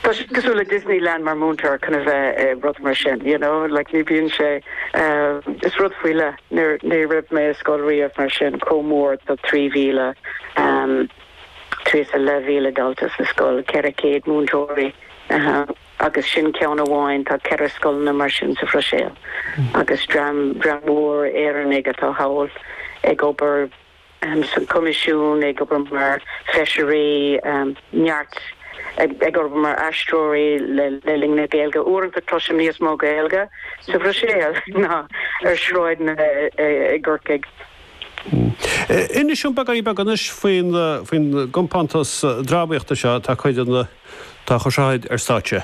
Tá sé cosúil le Disneyland mar mhúinteoir, chun a bheith i rud mar sin, you know, like ní bhíonn sé, is rud faoi leith, ní raibh mé i scoil riamh mar sin, chomh mór, tá trí mhíle, trí is a leith mhíle dalta sa scoil, ceithre chéad múinteoirí, agus sin ceann amháin, tá ceithre scoileanna mar sin sa Bhruiséil, agus dream mór Éireannaigh atá thall ag obair. san gCoimisiún, ag obair mar Feisirí, neart ag obair mar aistreoirí le linn na Gaeilge. Uaireanta cloisim níos mó Gaeilge sa Bhruiséil ná ar shráideanna i gCorcaigh. Inis dom beagáinín beag anois faoin gcompántas drámaíochta seo atá ag cur seo ar stáitse.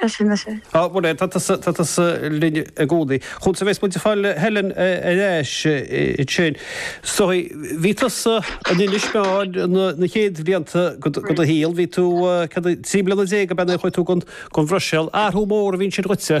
Sea, sin is é. Á, bhuel, tá tusa linn i gcónaí. Chúns a bheas muid ag fáil Helen ar ais ansin. So, bhí tusa in Inis Meáin an chéad bhlianta go do shaol. Bhí tú, céard é, trí bliana déag ab ea nuair a chuaigh tú gon Bhruiséal. Athrú mór a bhí ansin dhuitse?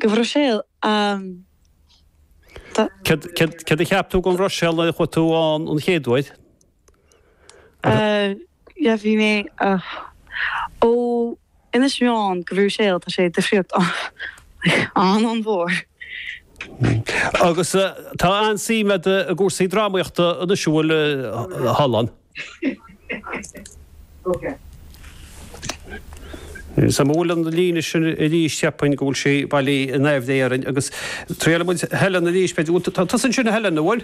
go Bhruiséil. Tá. Céard a cheap tú gon Bhruiséil nuair a chuaigh tú ann an chéad uair? Sea, bhí mé. Ó, Inis Meáin go Bhruiséil, tá sé difríocht an-an-mhór. Agus tá an-suim agat i gcúrsaí drámaíochta anois, an bhfuil? Thall ann. An bhfuil an líne sin ar ais, cheapfainn go bhfuil sí bailithe i ndáiríre agus triailfidh muid Helen arís, b'fhéidir. Bhuel, tá tusa ansin a Helen, an bhfuil?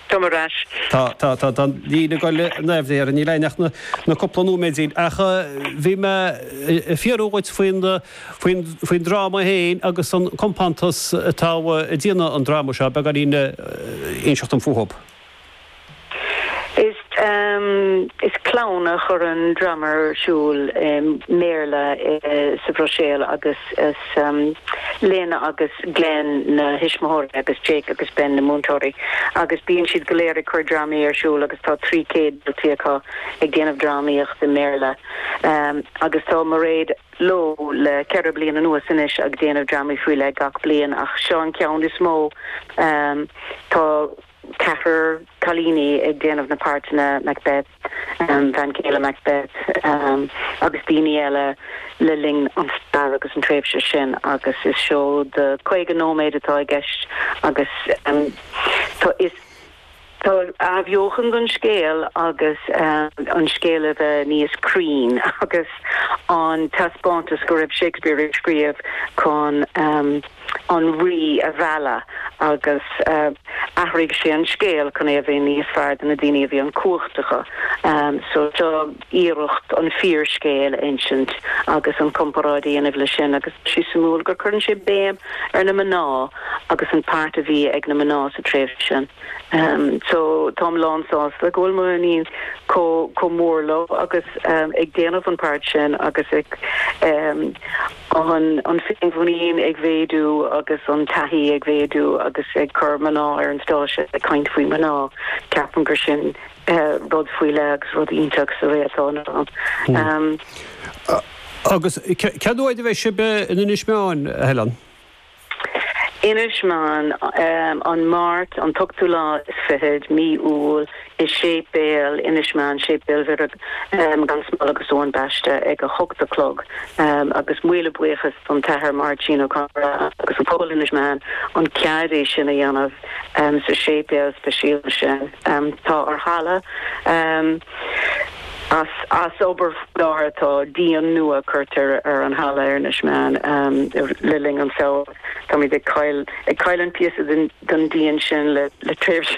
Tá mé ar ais. Tá, tá, tá an líne ag dul i ndáiríre, níl ann ach na cúpla nóiméidín. Ach bhí mé ag fiafraí dhíot faoin, faoin, faoin dráma féin agus an compántas atá a' déanamh an dráma seo, beagáinín a inseacht dom fúthub. Is clann a chuireann drama ar siúl i mBéarla sa Bhruiséil agus is Lena agus Glen na tuismitheoirí agus Jake agus Ben na múinteoirí agus bíonn siad go léir ag cur drámaí ar siúl agus tá trí céad daltaí acu ag déanamh drámaíocht i mBéarla agus tá Mairéad leo le ceithre bliain anuas anois ag déanamh drámaí faoi leith gach bliain ach seo an ceann is mó tá ceathrar cailíní ag déanamh na páirteanna Macbeth, bhean chéile Macbeth agus daoine eile le linn an stair agus an tréimhse sin agus is seó de 50 nóiméad atá i gceist agus tá athbheochan don scéal agus an scéal a bheith níos cruinn agus a thaispeáint go raibh Shakespeare ag scríobh chun an rí a mhealladh agus athraigh sé an scéal chun é a bheith níos fearr do na daoine a bhí an chumhacht acu. So seo iarracht an fíorscéal a insint agus an comparáid a dhéanamh le sin agus tá sé suimiúil gur cuireann sé béim ar na mná agus an páirt a bhí ag na mná sa tréimhse sin. So táim lán sásta go bhfuil mo iníon chomh mór leo agus ag déanamh an páirt sin agus ag. An féinmhuinín ag mhéadú agus an taithí ag méadú agus ag cur mná ar an stáitse ag caint faoi mhná, ceapaim gur sin rud faoi leith agus rud iontach sa ré atá inniu ann. Agus cén uair a bheidh sibh in Inis Meáin, a Helen? Inis Meáin, an Máirt, an t-ochtú lá is fichead, mí Iúil, i séipéal Inis Meáin, Séipéal Mhuire gan Smál agus Eoin Baiste, ag a hocht a chlog, agus míle buíochas don tAthair Máirtín Ó Conaire agus an pobal Inis Meáin an cead é sin a dhéanamh sa séipéal speisialta sin tá an halla As obair faoi láthair atá díon nua curtha ar an halla ar Inis Meáin le linn an tsamhraidh. Táimid ag caill, ag caill an píosa den díon sin le tréimhse.